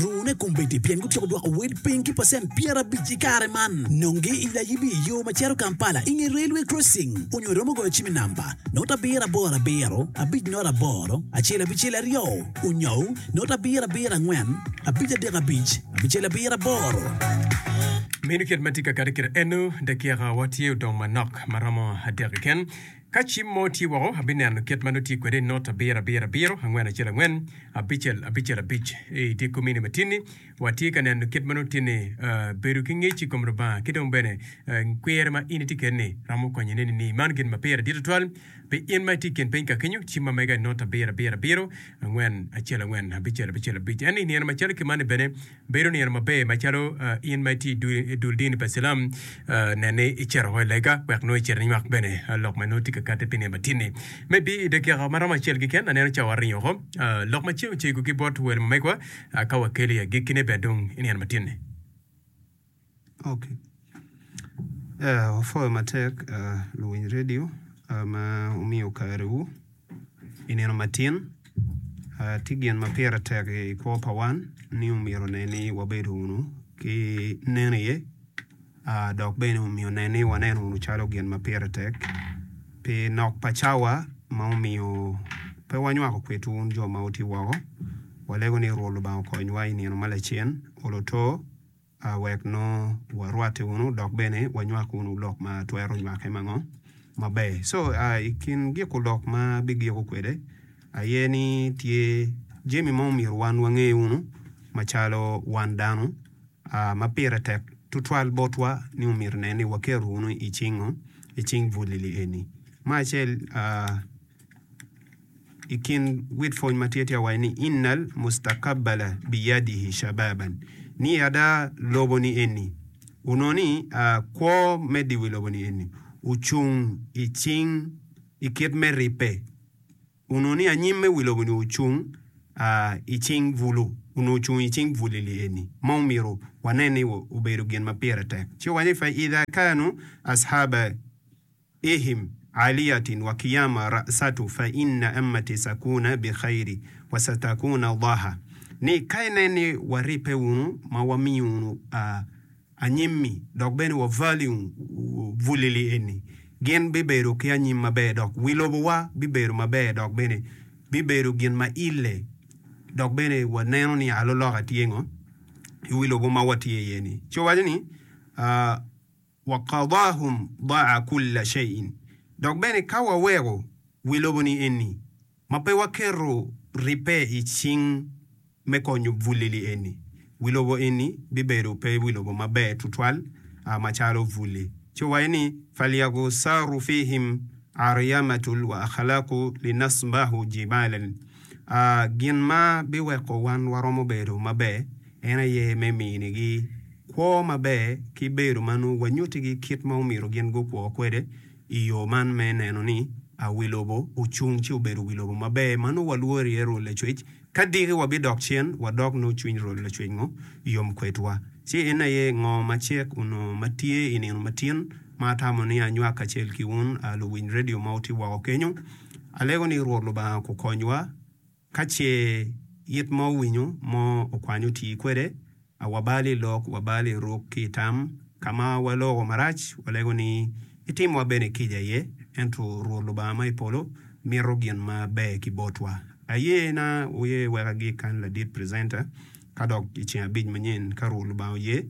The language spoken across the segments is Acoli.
Rune kombeddi pien gutyeko dwoko wel piny ki pacent pyerabic i kare man. Nonge i layibi i yo ma cito Kampala i nge Railway Crossing onyo iromo goyo cim i namba, not abiro aboro abiro, abic not aboro, acel abicel aryo, onyou, not abiro abiro angwen, abic adek abic, abicel abiro aboro. Meno kit ma tye kakati kite eno, dakika wa tye odong manok maromo adek keken. Ka cim mo tye woko, abineno kit ma nongo tye kwede i not abiro abiro abiro angwen acel angwen abicel abicel abic. I dye komini matin-ni, watye ka neno kit ma nongo tye ni bedo ki ngec i kom Lubanga ki dong bene kwir ma in itye kede-ni romo konyi i neni ni man gin ma pire dit tutwal pi in ma itye i kin piny ka kenyo. Cim ma mega i not abiro abiro abiro angwen acel angwen abicel abicel abic en ni i nino macalo ki mani bene, Bedo nino maber macalo in ma itye i dul dini pa cilam, nen ni icito woko i lega wek nongo icit inywak bene lok ma nongo tye ka katte pi nino matini. Me bi i dakika maromo acel keken, aneno ca waringo woko lok ma ceng ocego ki bot wel ma megwa, ka wakeli agikkine bene dong i nino matini. Wapwoyo matek luwiny redio ma wumiyo karewu i nino matin. Tye gin ma pire tek i kwo pa wan ni omyero nen ni wabedo wunu ki nen iye dok bene omyero nen ni waneno wunu calo gin ma pire tek pi nok pa cawa ma omiyo pe wanywako kwedwu wun jo ma wutye woko. Walego ni Rwot Lubanga okonywa i nino ma lacen olo oto. A Wek nongo warwatte wunu dok bene wanywak wunu lok ma twero nywake ma ngo maber. Co a i kin giko lok ma abigiko kwede aye ni tye jami ma omyero wan wange wunu macalo wan dano a ma pire tek tutwal botwa ni omyero nen ni waketo wunu i cing ngo? I cing bulili eni. Ma acel a. I kin wit pwony ma tye tye ka waco ni innal mustakabbala biyadihi shababan ni ada loboni eni onongo ni kwo me diwi loboni eni ocung i cing i kit me ribbe onongo ni anyim me wi loboni ocung i cing bulu onongo ocung i cing bulili eni ma omyero wanen ni obedo gin ma pire tek ci owaco ni fa idha kanu ashaba Ehim, Aliyatin wa kiyama ra'satu fa inna ammati sakuna bi khairi wa satakuna dhaha, ni ka inen ni waribbe wunu ma wamiyo wunu anyimmi dok bene wa vali wunu vulili eni, gin bibedo ki anyim maber dok wi lobowa bibedo maber dok bene bibedo gin ma ille dok bene wa neno ni aloloka tye ngo i wi lobo ma watye iye ni. Ci owaco ni. Wa qadahum daa kulla shein, dok bene ka waweko wi lobo ni eni, ma pe waketo ribbe i cing me konyo bulili eni, wi lobo eni bibedo pe wi lobo maber tutwal macalo bulli. Ci owaco ni, Falyagusaru fihim aryamatul wa akhlaku linasbahu jibalan, Gin ma biweko wan waromo bedo maber en aye me minigi. Kwo maber ki bedo ma nongo wanyutigi kit ma omyero gin gukwo kwede i yo man me neno ni a wi lobo ocung ci obedo wi lobo maber ma nongo walworo iye rwod lacwec. Ka diki wabidok cen wadok nongo cwiny rwod lacwec ngo yom kwedwa, ci en aye ngo ma cek onongo ma tye i nino matin ma atamo ni anywak kacel ki wun a luwiny redio ma wutye woko kenyo. Alego ni Rwot Lubanga okukonywa. Ka ce it mo owinyo, mo okwany oti kwede, a wabal i lok, wabal i ruk ki i tam. Ka ma waloko marac, walego ni, Itimowa bene kica aye, ento Rwot Lubanga ma i polo mito gin ma ber ki botwa. Ayena wuye wek agik kan ladit presenter, ka dok i ceng abic manyen, ka Rwot Lubanga oye.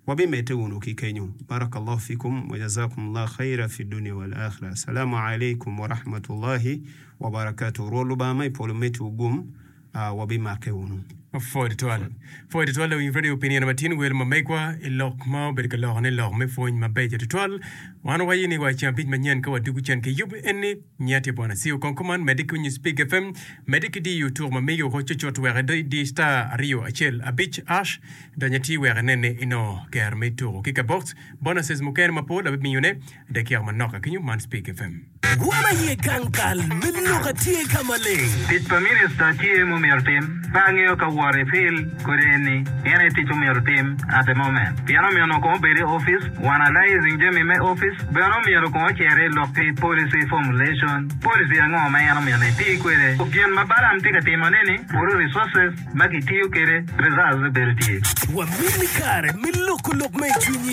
Wabimedde wunu ki kenyo. Barakallahu fikum wa jazakumullah khaira fi dunia wal akhira. Assalamu alaikum wa rahmatullahi wa barakatuh. Rwot Lubanga ma i polo meti wu gum, wabimakke wunu. Pwod itwal. Pwod itwal lawiny radio pi nino matin wel ma megwa i lok ma obedo ka lokone lok me pwony mabeco tutwal. Wan waye ni wa i ceng abic manyen ka wadwogo cen ki yub eni. Nya tye bwona siu kong kuman mede ki onyo speak fm mede ki diyo tuk ma miyo ko cucut wek ido idi star aryo acel abic ash dony atir wek inene inongo ger me tuku ki kabox bonuses mukene mapol abimiyo ne dakiaka manok ka kenyo man speak fm. Wam aye gang kal me lok atye ka maleng. Tic pa minista tye mumyero tim. Pe angeyo ka wor ipil. kodi eni, en aye tic omyero otim at the moment pien omyero onongo kong obed i office wa analyzing jami me office bene omyero kong ocer i lok ki policy formulation policy ango ma en omyero eti kwede ku gin ma Balaam tye ka timo neni kuru resources ma ki tiyo kede reserves bedo tye. Wamini kare me loko lok ma i cwinyi.